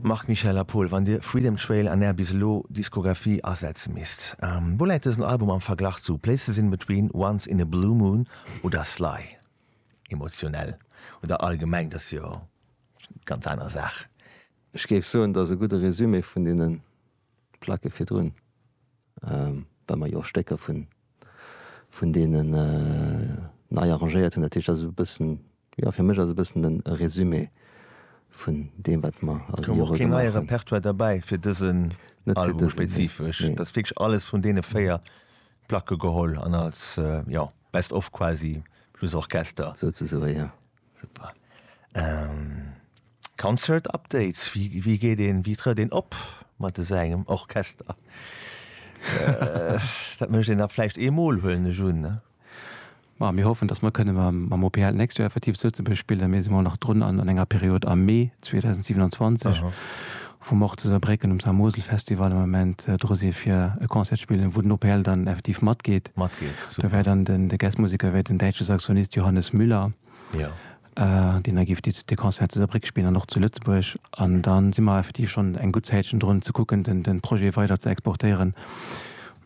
Marc Michel, A Pol, wann Dir Freedom Trail an Är bis elo Diskographie asetze misst, wou läit dësen Album am Verglach zu Places in Between, Once in a Blue Moon oder Sly? Emotionell oder allgemeng, dat ass jo ganz aner Saach. Ech géif soen, et ass e gudde Resumé vun deenen D'Placke virdrun, well mer jo och Stécker vun, vun deenen nei arrangéiert hunn. Dat heescht, dat ass e bëssen, jo, fir mech ass e bëssen e Résumé vun deem, wat mer all déi Jore gemaach hunn. Et koum och keen neie Repertoire derbäi fir dësen Album spezifesch? Net fir dësen, nee. Et ass wierklech alles vun deene véier Placke geholl an als, jo, Best of quasi plus Orchester. Souzesoe, jo. Super. Ähm, Concert Updates, wie, wie geet een, wie trëtt een op mat esou engem Orchester? äh, dat mécht een da vläicht eemol, huelen ech un, ne? Ma mir hoffen, dass mer kënne mam, mam OPL d'nächst Joer effektiv zu Lëtzebuerg spillen. Mir si mol nach drun an, an enger Period am Mee 2027. Aha. Vum och ze Saarbrécken um Saar-Mosel-Festival am Ament dru si fir e Concert spillen, wou den OPL dann effektiv matgeet. Matgeet, super. Do wär dann den, de Guest-Museker wär den däitsche Saxonist Johannes Müller. Jo. Deen da géif déi, dee Concert zu Saarbréck spillen an och zu Lëtzebuerg. An da si mer effektiv schonn eng gutt Zäitchen drun ze kucken, den, den Projet weider ze exportéieren.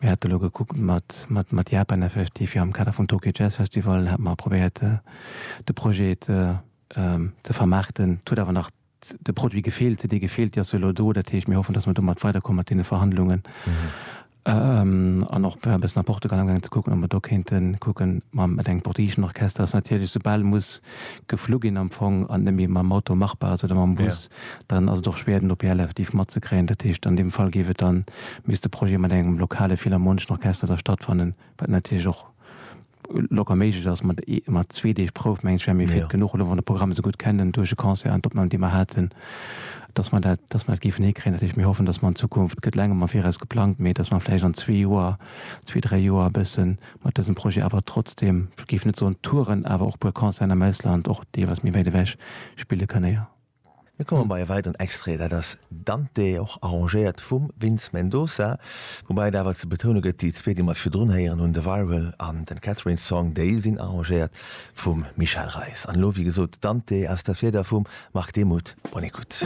Mir hate lo gekuckt mat, mat, mat Japan effektiv, fir am Kader vum Tokyo Jazz Festival hate mer probéiert de Projet ze vermaarten. Et huet awer nach De Produit gefeelt se, dee gefeelt, dee ass elo do. Dat heescht, mir hoffen, datt mer domat weiderkomme mat deene Verhandlungen an och e bëssen a Portugal amgaangen ze kucken, ob mer do kéinte kucken. Ma mat engem portugiseschen Orchester ass natierlech, esoubal muss geflu ginn am Fong an et net méi mam Auto machbar ass oder mam Bus, dann ass et och schwéier, den OPL effektiv matzekréien. Dat heescht, an deem Fall géif et dann, misst de Projet mat engem lokale philharmoneschen Orchester da stattfannen, wat natierlech och, locker méiglech ass, mat ee mat zwee Deeg Prouf, mengen ech, wäre mir fit genuch, elo wann de Programm esou gutt kennen duerch e Concert an d'Opnamen, déi mer haten, dass mer dat, dass mer dat géifen hikréien. Dat heescht, mir hoffen, dass mer an Zukunft, gëtt laangem am Viraus geplangt, mee dass mer vläicht an zwee Joer, zwee, dräi Joer e bësse mat dësem Projet awer trotzdeem, ech géif net soen Touren, awer och e puer Concerten am Ausland, och deelweis méi wäit ewech, spille kënne, jo. Mir komme bei e weideren Extrait, dat ass Dante, och arrangéiert vum Vince Mendoza, woubäi et awer ze betoune gëtt, déi zwee, déi mer virdrun héieren hunn, de Viral an den Catherine Song, déi sinn arrangéiert vum Michel Reis. An elo, wéi gesot, Dante aus der Fieder vum Marc Demuth. Bonne écoute.